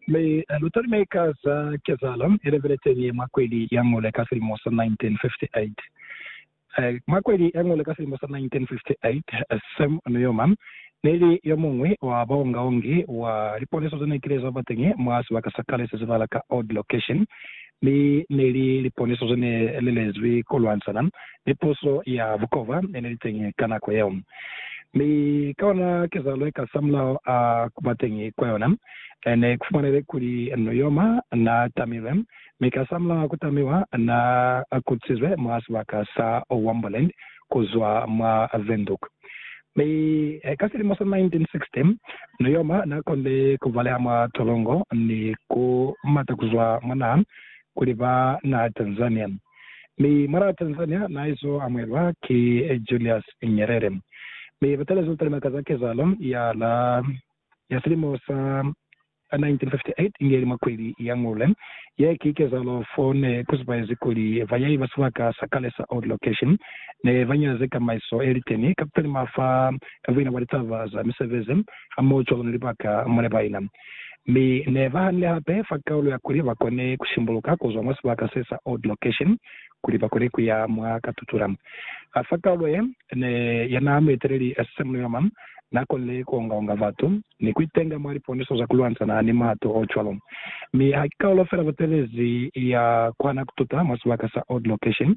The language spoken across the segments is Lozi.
Mi lutalime ka za kezaalo ilebeleteñi ye mwa kweli ya ngole ka silimo sa 1958? Mwa kweli ya ngole ka silimo sa 1958, Sam Nujoma neli yomuñwi wa baongaongi wa liponeso zenekilezabateñi mwa sibaka sa kale sezibala ka Odd Location, Mi neli liponiso ze ne li lezwi ku lwanisana ni puso ya bukova ye ne li teñi ka nako yeo. Mi ka ona kezahalo ye kasamulaho a ku ba teñi kwa yona, ne ku fumanehile kuli Nuyoma naa tamilwe, mi kasamulaho a ku tamiwa naa kutisizwe mwa sibaka sa Womboland ku zwa mwa Windhoek. Mi ka silimo sa 1960, Nujoma na konile ku baleha mwa tolongo ni ku mata ku zwa mwa naha kuli ba naha Tanzania. Mi mwana wa Tanzania na izo amuhelwa ki Julius Nyerere. Mi ba talezwa ku kalima ka za kezahalo ya la ya silimo sa a 1958 inge ili mwa kweli ya ngule ye ki kezalo fo ne ku zibaezi kuli bayahi ba sibaka sa kale sa Old Location ne ba nyaze kamaiso ye liteni ka ku talima fa ka buina bwa litaba za misebezi hamoho cwalo ni libaka mo ne ba ina. Mi ne ba hanile hape fa kaulo ya kuli ba kone ku shimbuluka ku zwa mwa sibaka se sa Old Location kuli ba kone ku ya mwa Katutura. Fa kaulo ye ne ya naha mueteleli Sam Nujoma, Na konile ku onga-onga batu ni ku itenga mwa liponiso za ku lwantshana ni matu o cwalo. Mi ha ki kaulo fela butelezi ya kuhana ku tuta mwa sibaka sa Old Location,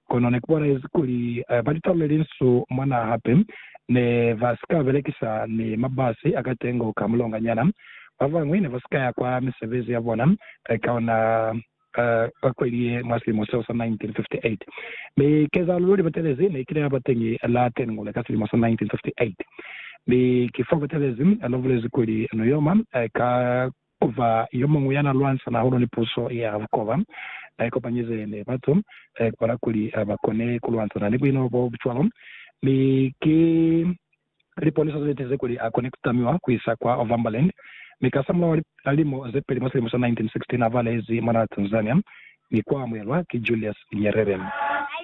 kono ne ku bonahezi kuli ba litalu le linsu mwa naha hape ne ba si ka belekisa ni mabasi a katengo ka mulonganyana. Ba bañwi ne ba si ka ya kwa misebezi ya bona ka ona. ka kweli ye mwa silimo seo sa 1958, mi kezahalo yo li batelezi ne kile ya ba teñi la Tengule ka silimo sa 1958. Mi ki fo batelezi na bulezi kuli no yoma ka ku ba yo muñwi ya na lwanisana hahulu ni puso ya bukoba, na ikopanyize ni batu kubala kuli ba kone ku lwanisana ni buino bo bucwalo, mi ki Liponiso ziletize kuli a kone kutamiwa kuisa kwa Ovambaland, mi kasamulaho la lilimo zepeli mwa silimo sa 1916 avalezi mwanaa Tanzania ni kuamuhelwa ki Julius Nyerere.